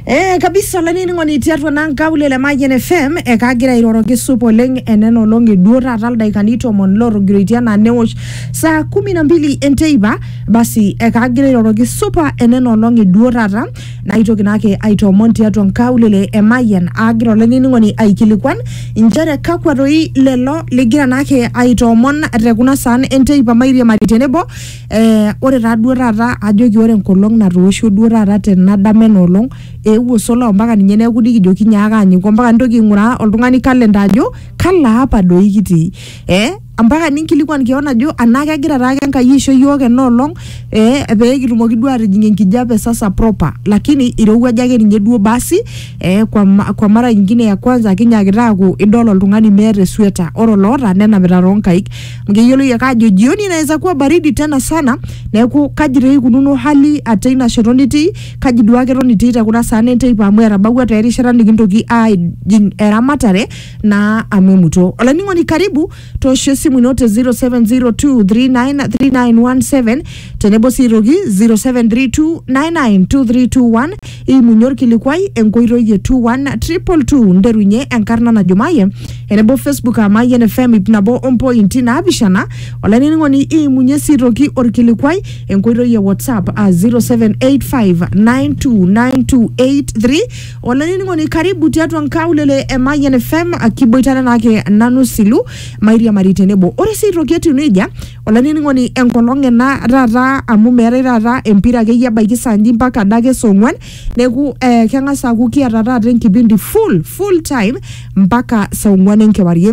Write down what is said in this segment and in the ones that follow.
Eh, kabisa olainining'oni tiatua naa nkaulele e Mayian FM ekagira airoroki sup oleng enena olong'i duo taata ildaikani tomon lootogiroitie anaa newosh saa kumi na mbili enteipa basi ekagira airoroki supa enena olong'i duo taata naitoki naake aitoomon tiatua nkaulele e Mayian aagira olainining'oni aikilikuan inchere kakwa doi lelo ligira naake aitoomon te kuna saan enteipa mairiamari tenebo Eh, ore taa duo taata ajoki ore enkolong natoosho duo taata tena dama ena olong eewuo sola ompaka ninye neeku nikijoki nyaaka anyiku ompaka nintoki aing'uraa oltung'ani calendar ajo kalo apa doi kitii eh ampaka ninkilikuan keon ajo anaa kegira taake Enkai aisho iyiok ena olong eh pekitumoki duo atijing enkijape sasa proper lakini irowuaja ake ninye duo basi eh kwa, ma- kwa mara ingine ya kwanza kinyaakita aaku idol oltung'ani meeta esueta ore oloota nenapita tonkaik Mgeyiolo yie ajo jioni inaweza kuwa baridi tena sana, neeku kaji taa ikununo hali ate ina shoto nitii, kaji duo ake eton itii te kuna saan enteipa amu etabawua taa erishata nikintoki aajing eramatare naa amu emuto. Olainining'oni karibu toosho esimu ino te 0702393917 tenebo sii aitoki 0732992321 iimunye orkilikuai enkoitoi e 21222 nterunye enkarna najo maye enebo facebook aa mayian fm ip nabo ompointi naapishana olainining'oni iimunye sii aitoki orkilikuai enkoitoi e whatsapp aa 0785929283 olainining'oni karibu tiatua nkaulele e mayian fm kiboitare naake nanu silu mairiamari tenebo ore sii aitoki etiu nejia olainining'oni enkolong ena taata amu meetae taata empira akeyie ebaiki saa nji mpaka adake saa ong'uan neeku eh, keng'as aaku kiata taata enkipindi full full time mpaka saa ong'uan enkewarie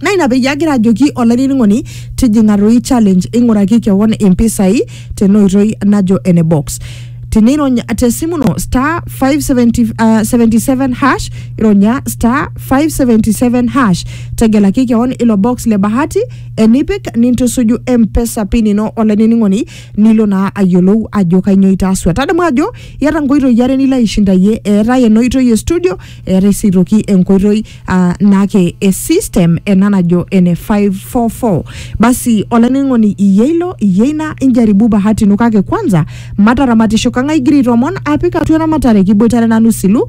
naa ina peyie agira ajoki olainining'oni tijing'a toi challenge ing'uraki kewon impisai tena oitoi najo ene box tinirony tesimu ino star 577 uh, hash ironya star 577 hash tegelaki kewon ilo box le bahati enipik nintusuju mpesa pin ino olainining'oni nilo naa ayiolou ajo kainyoo itaasua tadamu ajo iata nkoitoi are nilo aishindayie eetae ena oitoi e studio eetae sii aitoki enkoitoi ah, naake e system ena najo ene 544 basi olainining'oni iyie ilo iyie ina injaribu bahati ino kake kwanza mataramatisho kang'ae igira aitomon apik atua eramatare kiboitare nanu silu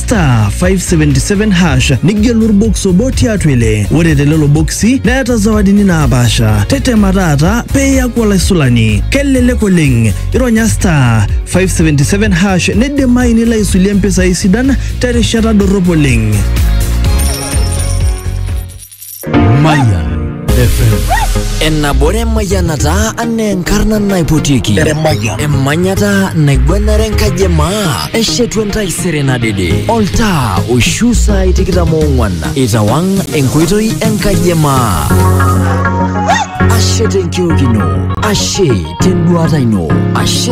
star 577 hash nigelu orbox obo tiatua ile ore telelo boksi neeta zawadini naapaasha tetema taata pee iyaku olaisulani kelelek oleng ironya star 577 hash nidimayu nilo aisulie mpisai sidan terishata dorrop oleng Mayan FM. Enabore mayanata anaa enkarna naipotieki emanyata naigwanare enkaji emaa eshetu entaisere nadede oltaa oishu saai tikitam oong'wan itawang enkoitoi enkaji emaa ashe tenkiok ino ashe tenduata ino ashe